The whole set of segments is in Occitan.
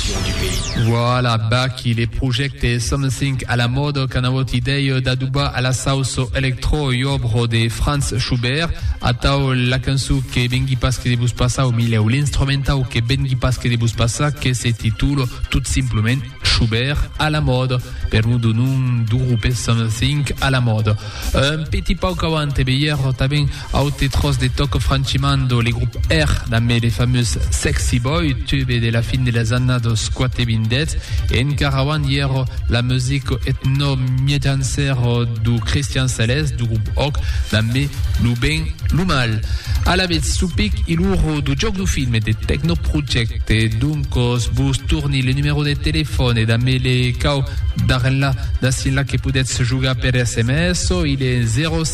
Constitucion du pays. Voilà, Baky, le projècte Something à la mode qu'an avut idèia d'adobar a la sauça electro ui òbro de Franz Schubert. Atau la cançon que vengui pas que de vos passar, au milèu, l'instrumentau que vengui pas que de vos passar, que se titula tot simplement Schubert à la mode, per non do nom do grupe Something à la mode. Un petit pauc avant, e veierò tanben, Aute tròç de Toco Francimando, le grop Air, damb le famós Sexy Boy, tube de la fin de las annados quatevindètz, e encara auant i èra la music etno-miejancèra do Cristian Celès, do grop Oc, damb Lo ben, lo mal. Alavetz, lo pic i l'uro do jòc do film e de Techno Project. E doncòs vos torni le numèro de telefòn e damb le cau d'arrenlar d'acienlà que podètz jogar per sms, o i le 07.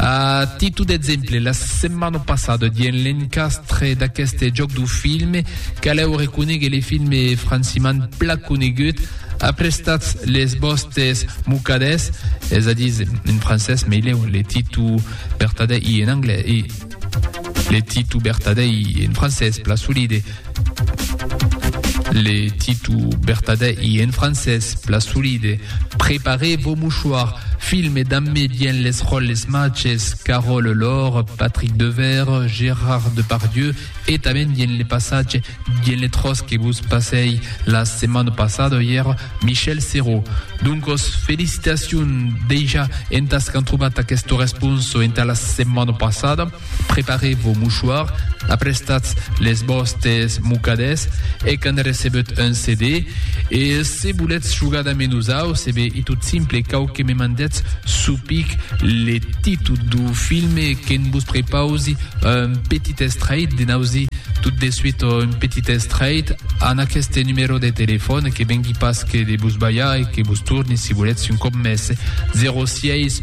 A titu d'exemple, la setmana passada dien l'encastre d'aqueste jòc du film, calèu reconéguer le film franciman pla conegut, Aprestatz les vòstes mocadets, es a dir, en francés, mei lèu le titu vertadèr i en anglés, e le titu vertadèr i en francés, pla solide. Le titu bertadè i en francés, pla solide. Preparez vos mouchoirs, filme damb mi bien les ròles machs, Carole Lor, Patrick Devers, Gérard Depardieu e tanben bien le passatge, bien le tròç que vos passèi la setmana passada ièr, Michel Serrault. Doncos, felicitacions dejà entàs qu'an trobat aquesta responsa entà la setmana passada. Preparez vos mouchoirs, aprestatz les vòstes mocadets e quand recebèt un CD, e se volètz jogar damb nosauts, e ben, i tot simple, cau que me mandètz suu pic le títol duu filme e que'n vos prepausi un petit estrait, de n'ausi tot de suit un petit estrait an aqueste numèro de telefòn, que vengui pas que de vos balhar e que vos torni, si volètz un còp mès, 06.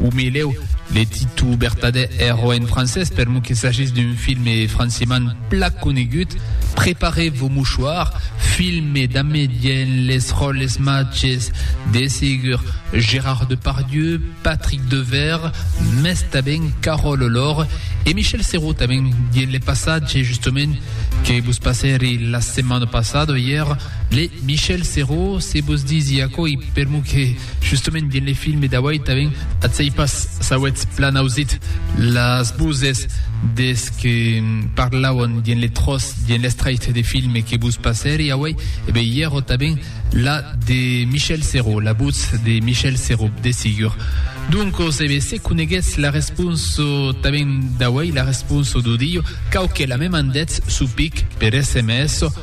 O meleu, le titu bertadè èro en francés, per lo que s'agís d'un filme franciman plan conegut, Préparez vos mouchoirs, filme damb dens les ròles matges de segur Gérard Depardieu, Patrick Devers, mès tanben Carole Olor e Michel Serrault tanben dens le passatge justement que vos passèri la setmana passada, ièr. Le Michel Serrault, se vos disi aquò i permu que justament dins le filme d'auei tanben atzei pas s'auetz plan ausit las voses des que parlauan dins le tròç, dins l'estraicht de filme que vos passèri auei, e ben i èra tanben la de Michel Serrault, la votz de Michel Serrault, de sigur. Doncos, e ben, se coneguètz la responsa tanben d'auei, la responsa d'audio, quauquelh a me mandètz su pic per sms,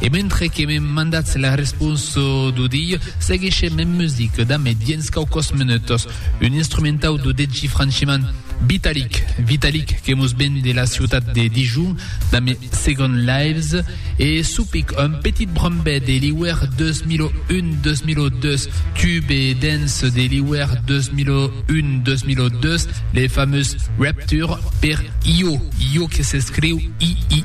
E mentre que me mandatz la respons d'o dilh, seguishem en music damb e dienz quauquòs menutos un instrumentau d'o degi franchiman Vitalik, Vitalik que mos ven de la ciutat de Dijon damb e Second Lives e Supic, un petit brombet de l'iuèr 2001-2002, tube dance de l'iuèr 2001-2002, le famós Rapture per Io, Io que s'escriu I-I.